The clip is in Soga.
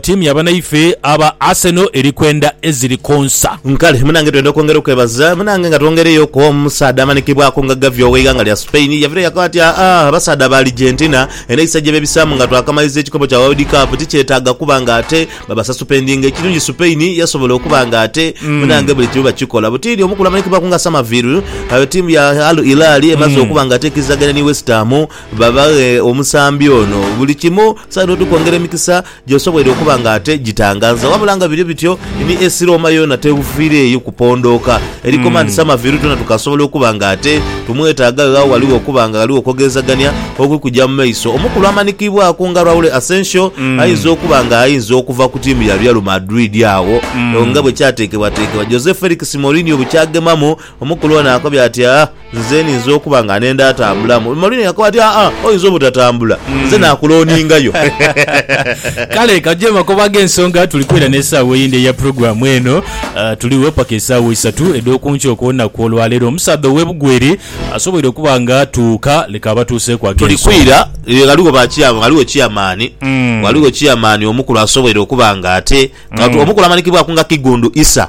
Ttiimu ya banaife aba Arsenal eri kwenda eziri konsa. Kale munange twenda okwongera okwebaza munange nga twongereyo ku omusaadha amanikibwaku nga Gavi oweighanga lya Spain yavireyo yakoba ati aa abasaadha ba Argentina enhayisa gyebebisamu nga twakamaliza ekikopo kya World Cup tikyetaaga kuba nga ate babasasupendinga ekirungi Spain yasobola okuba nga ate munange buli kimu bakikola butidi omukulu amanikibwaku nga Samaviru ttiimu ya Al Hilal emaze okuba nga ate ekirizaganya ni West Ham Babaghe omusambi ono buli kimu saidi oti kwongera emikisa gy'osoboire okuba nga ate gitanganza. Wabula nga biri bityo, ni esi Rooma yoona tefiireeyo kupondooka eri Komandi Summerville, twena tukasobola okuba nga ate tumwetaaga gha ghaligho okuba nga ghaligho okwogerezagania okuli kuja mu maiso. Omukulu amanikiibwaku nga Raul Asensio aidha okuba nga aidha okuva ku tiimu ya Real Madrid agho nga bwe kyateekebwateekebwa Jose Felix Mourinho bukyagemamu. Omukulu ono akobye ati, Aa, nze ninza okuba nga nenda atambulamu. Maureen yakoba ati, Aa, oinza obutatambula, nze naakulooningayo. Kale ka gye makoba ag'ensonga tuli kwidha n'esaawa eyindi eya pulogulaamu eno. Tuligho paka esaawa isatu edh'oku nkya okw'olunaku olwaleero. Omusaadha ow'e Bugweri asoboire okuba nga atuuka, leka abatuuseeku Tuli ag'ensonga. kwidha, e, ghaligho ba chair, ghaligho chairman, ghaligho chairman omukulu asoboire okuba nga ate, nga tu, omukulu amanikibwaku nga Kigundu Isa.